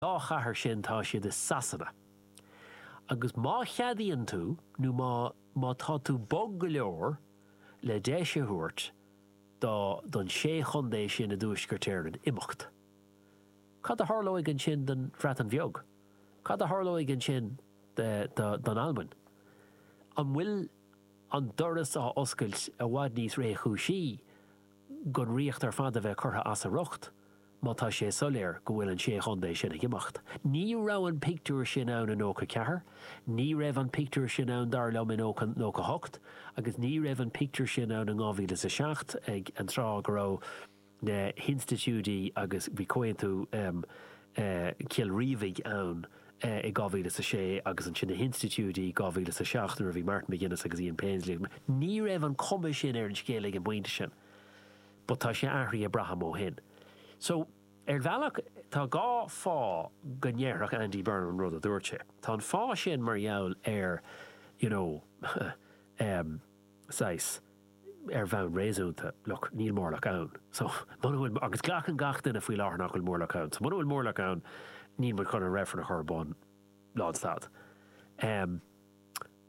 dá chathair sin tá siad i Sasana. Agus má cheadaíonn tú nó má, má tá tú bog go leor le deis a thabhairt do, don sé chontae sin i dTuaisceart Éireann imeacht, cad a tharlóidh ansin don Bhreatain Bheag? Cad a tharlóidh ansin do, do, d'Albain? An bhfuil an doras á oscailt i bhfad níos réchúisí don Ríocht ar fad a bheith curtha as a riocht, má tá sé soiléir go bhfuil an sé chontae sin ag imeacht. Ní raibh an pictiúr sin ann i nócha ceathair, ní raibh an pictiúr sin ann, dar liom, i nócha, nócha hocht agus ní raibh an pictiúr sin ann i ndhá mhíle is a seacht ag an tráth go raibh na hinstitiúidí agus bhí Comhaontú Chill Rímhinn ann. i 2006 agus ansin na hinstitiúidí i 2007 nuair a bhí Martin McGuinness agus Ian Paisley ag Ní raibh an chuma sin ar an scéal ag an bpointe sin but tá sé athraithe braithim ó shin. So, ar bhealach, tá dhá fáth go ndéarfadh Andy Burnham an rud a dúirt sé. Tá an fáth sin mar gheall ar, you know, eh, saghas, ar bhonn réasúnta, look, níl móramh ann. So, muna bhfuil, agus glacann gach duine faoi láthair nach bhfuil móramh ann, so muna bhfuil móramh ann, níl muid chun an reifreann a chur ar bun, lánstad. Em,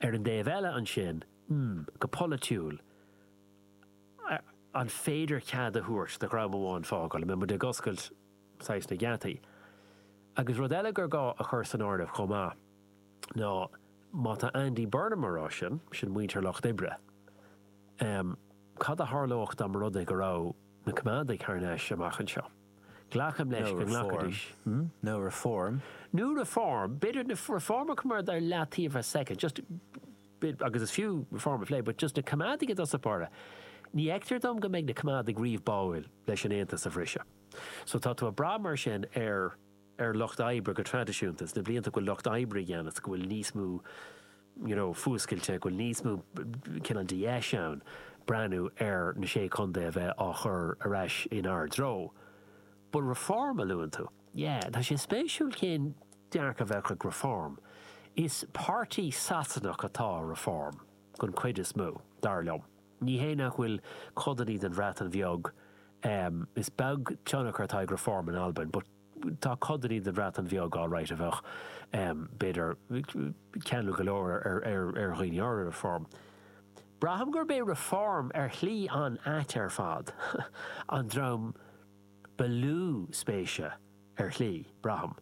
ar an dtaobh eile ansin, hmm, go polaitiúil, an féidir cead a thabhairt do dhream amháin fágáil, an mbeidh muid ag oscailt, saghas, na geataí? Agus rud eile gur gá a chur san áireamh chomh maith, ná má tá Andy Burnham ag rá sin, sin muintir Lucht Oibre. Ehm, cad a tharlódh dá mba rud é go raibh na Coimeádaigh thar n-ais amach anseo? Glacaim leis go nglacfaidís, hm? Nó Reform. Nó Reform, b'fhéidir cuirfimid Reform ar leataobh ar soicind, just bit, agus is fiú reform a phlé, but just na Coimeádaigh i dtosach báire, ní fheictear dom go mbeidh na Coimeádaigh riamh báúil leis an Aontas a bhriseadh. So tá tú ag brath mar sin ar. ar lucht oibre go traidisiúnta sna blianta go bhfuil lucht oibre i gceannas, go bhfuil níos mó you know fuascailte, go bhfuil níos mó cineál de dheis ann breathnú ar na Sé Chontae a bheith á chur ar ais inár dtreo. But reform a luann tú. Yeah, tá sé spéisiúil cén dearcadh a bheadh ag Reform. Is páirtí Sasanach atá i Reform den chuid is mó, dar liom. Ní hé nach bhfuil codanna den Bhreatain Bheag ehm, is beag tionchar atá ag Reform in Albain but, Tá codanna den Bhreatain Bheag alright a bheadh b'fhéidir ceanúil go leor ar dhaoine ar, ar Reform. Braithim gurb é Reform ar shlí an-ait ar fad an dream ba lú spéise ar shlí, braithim,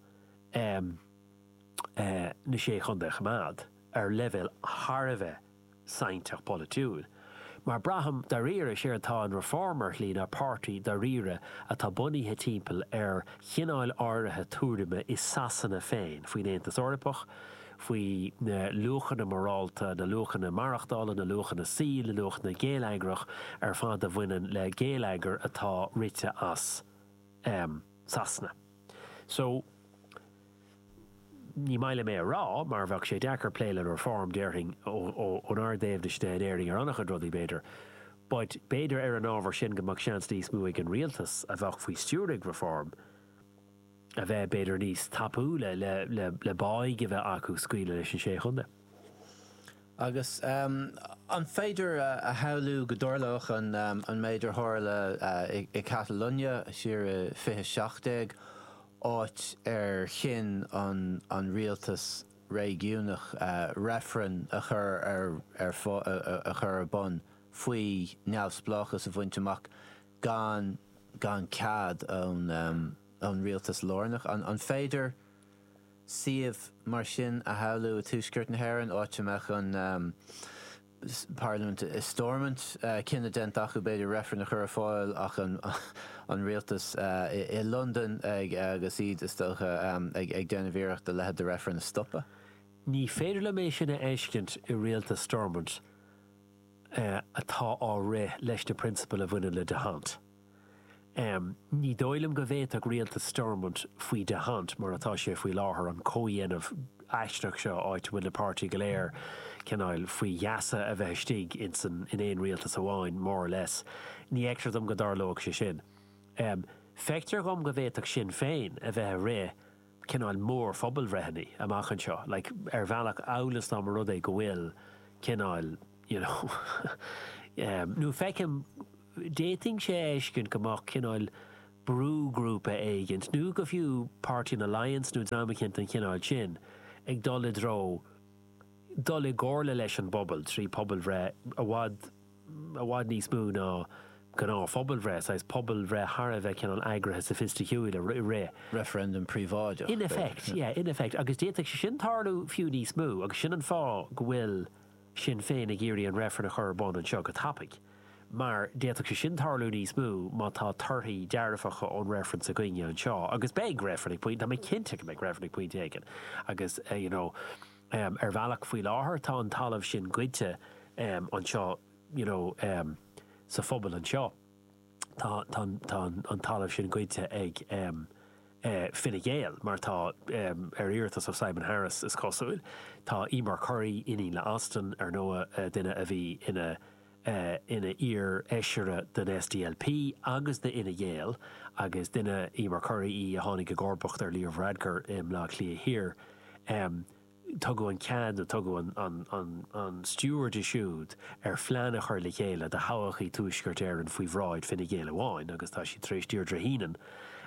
na sé chontae a choimeád ar leibhéal thar a bheith sainteach polaitiúil. Mar braithim dairíre is éard atá in Reform ar shlí ná páirtí dairíre atá bunaithe timpeall ar chineáil áirithe tuairime i Sasana féin faoin Aontas Eorpach, faoi na luachanna morálta, na luachanna maireachtála, na luachanna saoil, na luachanna geilleagrach ar fad a bhaineann le geilleagar atá rite as Sasana. So. Ní maith liom é a rá mar bheadh sé deacair plé le Reform déarfainn, ónár dtaobhna in Éirinn ar an-chuid rudaí b'fhéidir. But b'fhéidir ar an ábhar sin go mbeadh seans níos mó ag an rialtas a bheadh faoi stiúir ag Reform a bheith b'fhéidir níos tapúla le báidh a bheith acu scaoileadh leis an sé chontae. Agus an féidir a shamhlú go dtarlódh an méid a tharla i Catalóin siar i 2017, áit ar chinn an rialtas réigiúnach reifreann a chur ar bun faoi neamhspleáchas a bhaint amach gan cead ón rialtas lárnach? An féidir? suíomh mar sin a shamhlú i Tuaisceart na hÉireann, áit a mbeadh an parlaimint i Stormont, cinneadh déanta acu b'fhéidir reifreann a chur ar fáil ach an rialtas i Londain agus iad is dócha ag déanamh iarracht a leithéid de reifreann a stopadh. Ní féidir liom é sin a fheiscint i rialtas Stormont atá á rith leis na prionsabail a bhaineann le d'Hondt. Ní dóigh liom go bhféadfadh rialtas Stormont, faoi d'Hondt mar atá sé faoi láthair, an comhdhéanamh aisteach seo áit a bhfuil na páirtithe go léir, cineáil, faoi gheasa a bheith istigh insa, in aon rialtas amháin, more or less. Ní fheictear dom go dtarlódh sé sin. Feictear dhom go bhféadfadh Sinn Féin a bheith ag rith, cineáil, mór-phobalbhreitheanna amach anseo, like, ar bhealach amhail is dá mba rud é go bhfuil, cineáil, you know, nó feicim, D'fhéadfainn é a fheiscint go mbeadh cineál brúghrúpa éigin, nó go fiú Páirtí an Alliance nó dream éicint den chineál sin, ag dul i dtreo dul i gcomhairle leis an bpobal trí pobalbhreith i bhfad, i bhfad níos mó ná gnáthphobalbhreith, saghas pobalbhreith thar a bheith cineál eagraithe soifisticiúil á rith. Reifreann príobháideach, b'fhéidir. In effect, yeah, in effect. Agus d'fhéadfadh sé sin tarlú fiú níos mó agus sin an fáth go bhfuil. Sinn Féin ag iarraidh an reifreann a chur ar bun anseo go tapaidh mar d'fhéadfadh sé sin tarlú níos mó má tá torthaí dearfacha ón reifreann againne anseo agus beidh reifreann ag pointe, tá mé cinnte go mbeidh reifreann ag pointe éigin agus you know ar bhealach faoi láthair tá an talamh sin goidte anseo you know sa phobal anseo. Tá an talamh sin goidte ag Fine Gael, mar atá, ar iarratas ó Simon Harris, is cosúil. Tá Emer Currie, iníon le Austin, ar ndóigh, duine a bhí ina iar-fheisire den SDLP agus d'Fhine Gael, agus duine, Emer Currie, í a tháinig i gcomharbacht ar Leo Varadkar i mBleá Cliath Thiar. Tugadh an cead nó tugadh an stiúir di siúd ar phlean a chur le chéile do thodhchaí Thuaisceart Éireann faoi bhráid Fine Gael amháin agus tá siad tar éis Deirdre Heenan,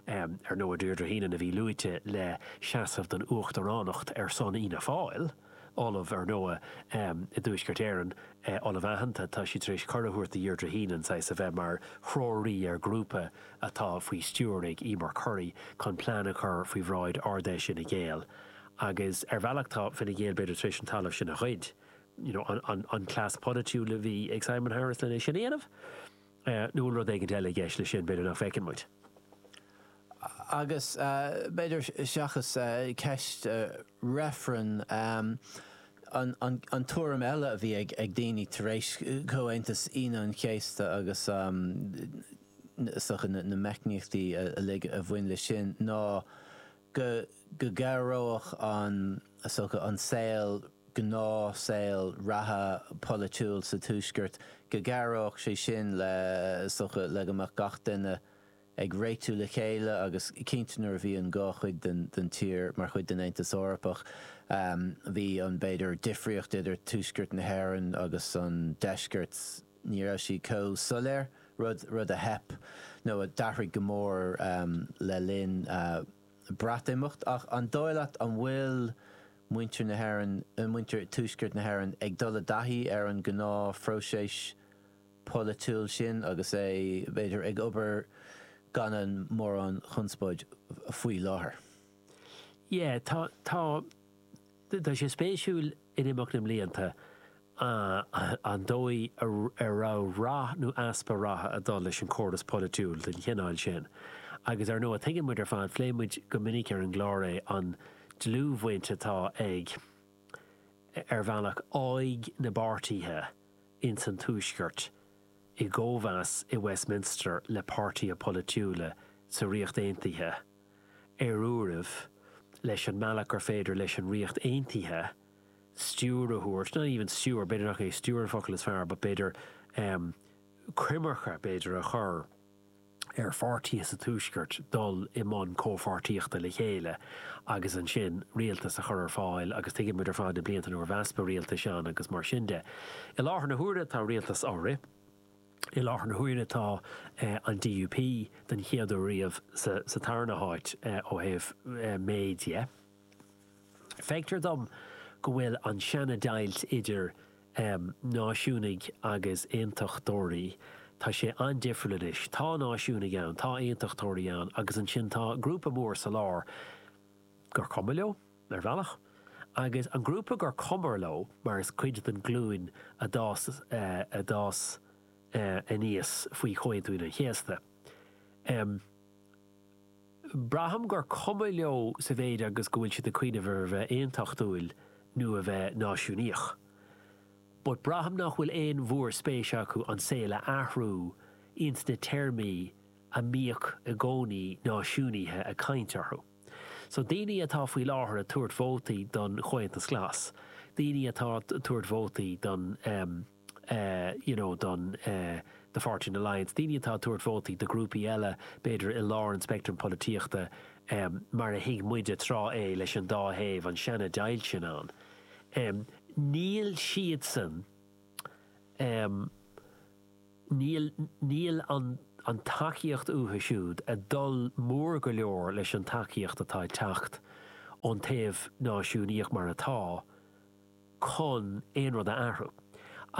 ar ndóigh, Deirdre Heenan a bhí luaite le seasamh don uachtaránacht ar son Fhianna Fáil, ollamh, ar ndóigh, i dTuaisceart Éireann, ollamh aitheanta, tá siad tar éis cuireadh a thabhairt do Dheirdre Heenan saghas a bheith mar threoraí ar ghrúpa atá faoi stiúir ag Emer Currie chun plean a chur faoi bhráid Ard-Fheis Fhine Gael. Agus ar bhealach tá Fine Gael b'fhéidir tar éis an talamh sin a ghoid. You know, an cleas polaitiúil a bhí ag Simon Harris len é sin a dhéanamh? Nó an bhfuil rud éigin eile i gceist leis sin b'fhéidir nach bhfeiceann muid? Agus b'fhéidir seachas ceist reifrinn, an tuairim eile a bhí ag daoine tar éis Chomhaontas Aoine an Chéasta agus na meicníochtaí uilig a bhain leis sin ná, go gcabhródh an, is dócha, an saol, gnáthshaol reatha polaitiúil sa Tuaisceart, go gcabhródh sé sin le, is dócha, go mbeadh gach duine ag réitiú le chéile agus cinnte nuair a bhí an dhá chuid den, den tír mar chuid den Aontas Eorpach, bhí an, b'fhéidir, difríocht idir Tuaisceart na hÉireann agus an Deisceart. Ní raibh sí chomh soiléir, rud rud a theip nó a d'athraigh go mór le linn Breatimeacht. Ach an dóigh leat an bhfuil muintir na hÉireann, muintir Tuaisceart na hÉireann ag dul i dtaithí ar an gnáth phróiseas polaitiúil sin agus é, b'fhéidir, ag obair gan aon mhórán chonspóid faoi láthair? Yeah, tá. Tá sé spéisiúil in imeacht na mblianta an dóigh ar raibh rath nó easpa ratha ag dul leis an chóras polaitiúil den chineál sin. Agus ar ndóigh, tuigeann muid ar fad, phléigh muid go minic ar an gclár é, an dlúthbhaint atá ag, ar bhealach, ádh na bpáirtithe ins an Tuaisceart i gcóimheas i Westminster le páirtithe polaitiúla sa Ríocht Aontaithe. ar uairibh, leis an mbealach gur féidir leis an Ríocht Aontaithe stiúir a thabhairt, not even stiúir, b'fhéidir nach é stiúir an focal is fearr, but b'fhéidir em coimirce b'fhéidir a chur ar pháirtithe sa Tuaisceart dul i mbun comhpháirtíochta le chéile agus ansin rialtas a chur ar fáil agus tuigeann muid ar fad na blianta nuair a bhí easpa rialtais ann agus mar sin de. I láthair na huaire tá rialtas á rith. I láthair na huaire tá an DUP, den chéad uair riamh, sa tarna háit ó thaobh méid dhe. Feictear dom go bhfuil an seana deighilt idir náisiúnaigh agus aontachtóirí, tá sé an-difriúil anois. Tá náisiúnaigh ann, tá aontachtóirí ann agus ansin tá grúpa mór sa lár gur cuma leo. ar bhealach, agus an grúpa gur cuma leo mar is cuid den glúin a d'fhás a d'fhás aníos faoi Chomhaontú Aoine an Chéasta. Em. braithim gur cuma leo sa mhéid agus go bhfuil siad ag coinneáil ar a bheith aontachtúil nó a bheith náisiúnaíoch. But braithim nach bhfuil aon mhórspéis acu an saol a athrú ins na téarmaí a mbíodh i gcónaí náisiúnaithe ag caint orthu. So daoine atá faoi láthair ag tabhairt vótaí don Chomhaontas Glas, daoine atá ag tabhairt vótaí don ehm, eh, you know, don eh, do Pháirtí an Alliance, daoine atá ag tabhairt vótaí do ghrúpaí eile, b'fhéidir i lár an speictrim polaitíochta, ehm, mar a thuig muide tráth é leis an dá thaobh, an seana deighilt sin ann, ehm, níl siadsan, ehm, Níl, níl an an tacaíocht uathu siúd ag dul mór go leor leis an tacaíocht atá ag teacht ón taobh náisiúnaíoch mar atá chun aon rud a athrú.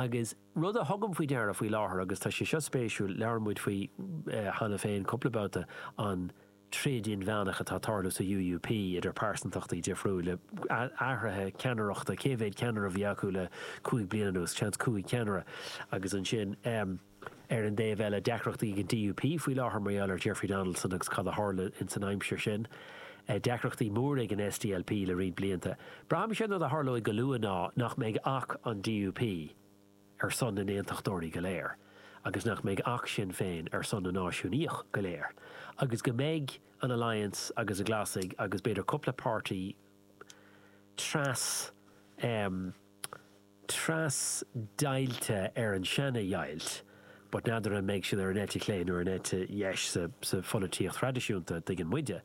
Agus rud a thugaim faoi deara faoi láthair agus tá sé seo spéisiúil, labhair muid faoi cheana féin cúpla babhta, an. troid inmheánach atá ag tarlú sa UUP idir pearsantachtaí difriúila, athruithe ceannaireachta, cé mhéad ceannaire a bhí acu le cúig bliana anuas, seans cúig cheannaire, agus ansin ar an dtaobh eile deacrachtaí ag an DUP faoi láthair mar gheall ar Jeffrey Donaldson agus cad a tharla insan aimsir sin, deacrachtaí móra ag an SDLP le roinnt blianta. Braithimse an rud a tharlóidh go luath ná nach mbeidh ach an DUP. ar son na n-aontachtóirí go léir agus nach mbeidh ach Sinn Féin ar son na náisiúnaíoch go léir agus go mbeidh an Alliance agus na Glasaigh agus b'fhéidir cúpla páirtí tras em tras deighilte ar an seana dheighilt but n'fheadar an mbeidh siad ar an eite chlé nó ar an eite dheis sa sa pholaitíocht thraidisiúnta a thuigeann muide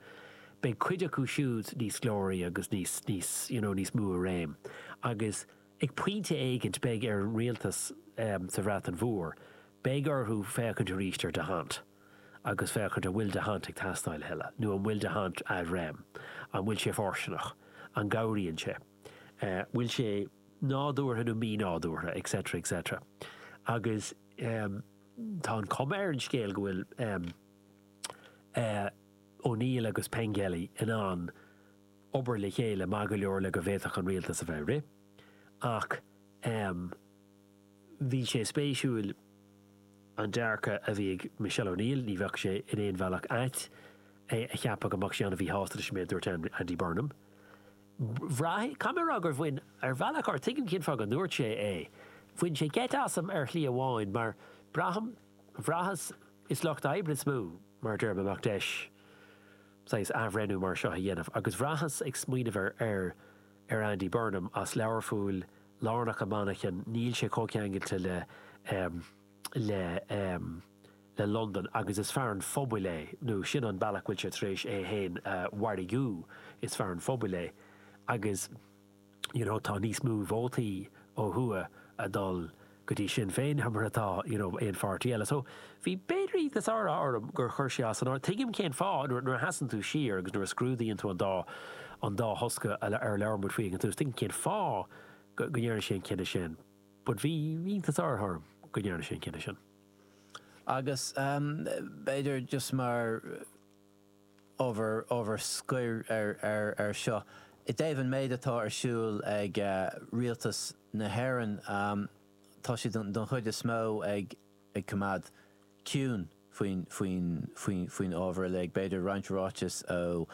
beidh cuid acu siúd níos glóraí agus níos níos you know níos mó i réim agus Ag pointe éigint beidh ar an rialtas sa Bhreatain Mhór, beidh orthu féachaint arís ar d'Hondt agus féachaint an bhfuil d'Hondt ag teastáil a thuilleadh nó an bhfuil d'Hondt ad rem. An bhfuil sé fóirsteanach? An gcabhraíonn sé? An bhfuil sé nádúrtha nó mí-nádúrtha? Et cetera, et cetera. Agus tá an chuma ar an scéal go bhfuil O'Neill agus Pengelly in ann. obair le chéile maith go leor le go bhféadfadh an rialtas a bheith ag rith. Ach bhí sé spéisiúil an dearcadh a bhí ag Michelle O'Neill, ní bheadh sé in aon bhealach ait é a cheapadh go mbeadh sí an-mhíshásta leis an méid a dúirt Andy Burnham. Bhraith, caithfidh mé a rá gur bhain, ar bhealach ó tuigim cén fáth go ndúirt sé é, bhain sé geit asam ar shlí amháin mar braithim, bhraitheas, is lucht oibre is mó mar a deir mé a mbeadh deis, saghas athbhreithniú mar seo a dhéanamh agus bhraitheas ag smaoineamh ar ar ar Andy Burnham as Learpholl lárnach i Manchain níl sé chomh ceangailte le le le Londain agus is fear an phobail é nó sin an bealach a bhfuil sé tar éis é féin a mhargú is fear an phobail é agus you know tá níos mó vótaí ó thuaidh ag dul go dtí Sinn Féin ná mar atá you know aon pháirtí eile so bhí b'fhéidir iontas orm gur chuir sé é as an áireamh tuigim cén fáth nuair nuair a sheasann tú siar agus nuair a scrúdaíonn tú an dá an dá thosca a ar labhair muid faoi ag an tús tuigim cén fáth go go ndearna sé an cinneadh sin but bhí iontas orm go ndearna sé an cinneadh sin agus ehm b'fhéidir just mar ábhar ábhar scoir air seo i dtaobh an méid atá ar siúl ag rialtas na hÉireann. Tá siad don chuid is mó ag coimeád ciúin faoin ábhar uilig. B'fhéidir roinnt ráiteas ó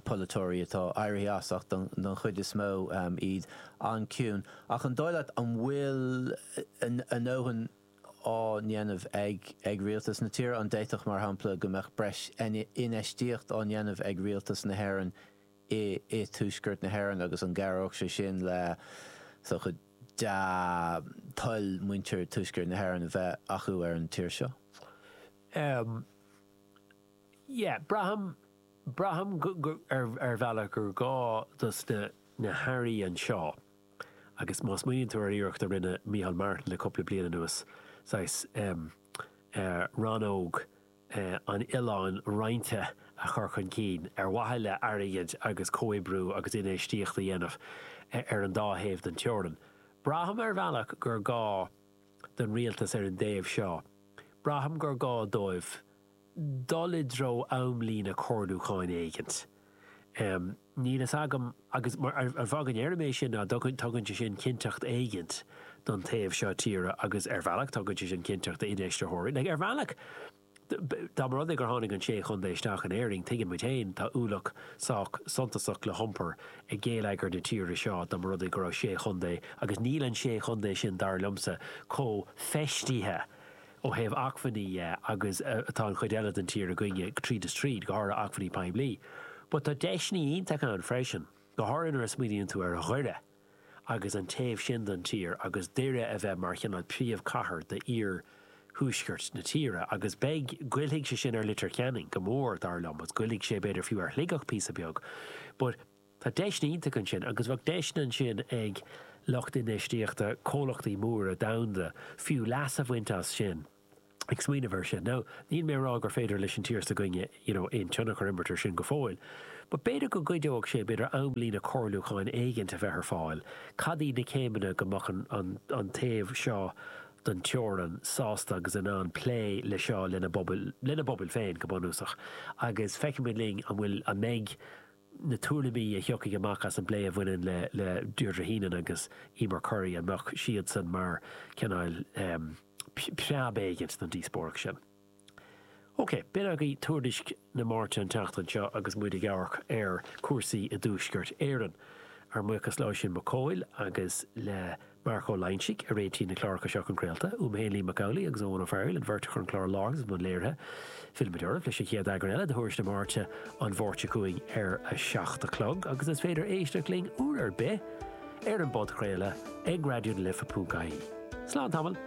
pholaiteoirí atá éirithe as ach don chuid is mó iad an-chiúin. Ach an dóigh leat an bhfuil a ndóthain á ndéanamh ag rialtas na tíre? An bhféadfadh, mar shampla, go mbeadh breis infheistíocht á ndéanamh ag rialtas na hÉireann i dTuaisceart na hÉireann agus an gcabhródh sé sin le dea-thoil muintir Tuaisceart na hÉireann a bheith acu ar an tír seo? Ahem. Yeah, braithim, braithim ar bhealach gur gá dos na hAirí anseo. agus má smaoiníonn tú ar iarracht a rinne Micheál Martin le cúpla bliain anuas saghas rannóg an oileáin roinnte a chur chun cinn ar mhaithe le airgead agus comhoibriú agus infheistíocht a dhéanamh ar an dá thaobh den teorainn. Braithim ar bhealach gur gá don rialtas ar an dtaobh seo, braithim gur gá dóibh dul i dtreo amlíne comhairliúcháin éigin. Níl fhios agam agus an fáth a ndeirim é sin ná tugann sé sin cinnteacht éigin don taobh seo tíre agus ar bhealach tugann sé sin cinnteacht d'infheisteoirí. Like ar bhealach dá mba rud é gur tháinig an sé chontae isteach in Éirinn tuigeann muid féin tá ualach sách suntasach le hiompar ag géilleagar na tíre seo dá mba rud é go raibh sé chontae agus níl an sé chontae sin dar liomsa chomh feistithe ó thaobh acmhainní dhe agus atá an chuid eile den tír againne tríd is tríd, go háirithe acmhainní poiblí. But tá deiseanna iontacha ann freisin, go háirithe nuair a smaoiníonn tú ar Dhoire agus an taobh sin den tír agus Doire a bheith mar chineál príomhcathair d'iarthuaisceart na tíre agus beidh, goillfidh sé sin ar Leitir Ceanainn go mór dar liom agus goillfidh sé b'fhéidir fiú ar Shligeach píosa beag but Tá deiseanna iontacha ansin agus bheadh deiseanna ansin ag lucht infheistíochta, comhlachtaí móra domhanda fiú, leas a bhaint as sin. Ag smaoineamh ar sin. Now, níl mé ag rá gur féidir leis an tír s'againne you know aon tionchar imirt ar sin go fóill but b'fhéidir go gcuideodh sé, b'fhéidir amlíne comhairliúcháin éigin a bheith ar fáil, cad iad na céimeanna go mbeadh an an an taobh seo den teorainn sásta agus in ann plé le seo lena bpobal lena bpobal féin go bunúsach agus feicfimid linn an bhfuil an mbeidh na tuairimí a thiocfaidh amach as an bplé a bhaineann le Deirdre Heenan agus Eimear Currie, an mbeadh siadsan mar chineál preab éigin don díospóireacht sin? OK, sin agaibh Tuairisc na Máirte an tseachtain seo agus muid ag amharc ar chúrsaí i dTuaisceart Éireann. Ár mbuíochas le hOisín Mac Cóil agus le. Marc Ó Loingsigh a réitigh na cláracha seo chun craolta. Uaimse Liam Mac Amhlaigh agus Eoghan Ó Fearghail an bheirt a chur an clár i láthair is i mbun léirithe. Fillfimid oraibh leis an chéad eagrán eile de Thuairisc na Máirte an Mháirt seo chugainn ar a seacht a chlog agus is féidir éisteacht linn uair ar bith ar an bpodchraoladh ag raidiona life punc ie. Slán tamall.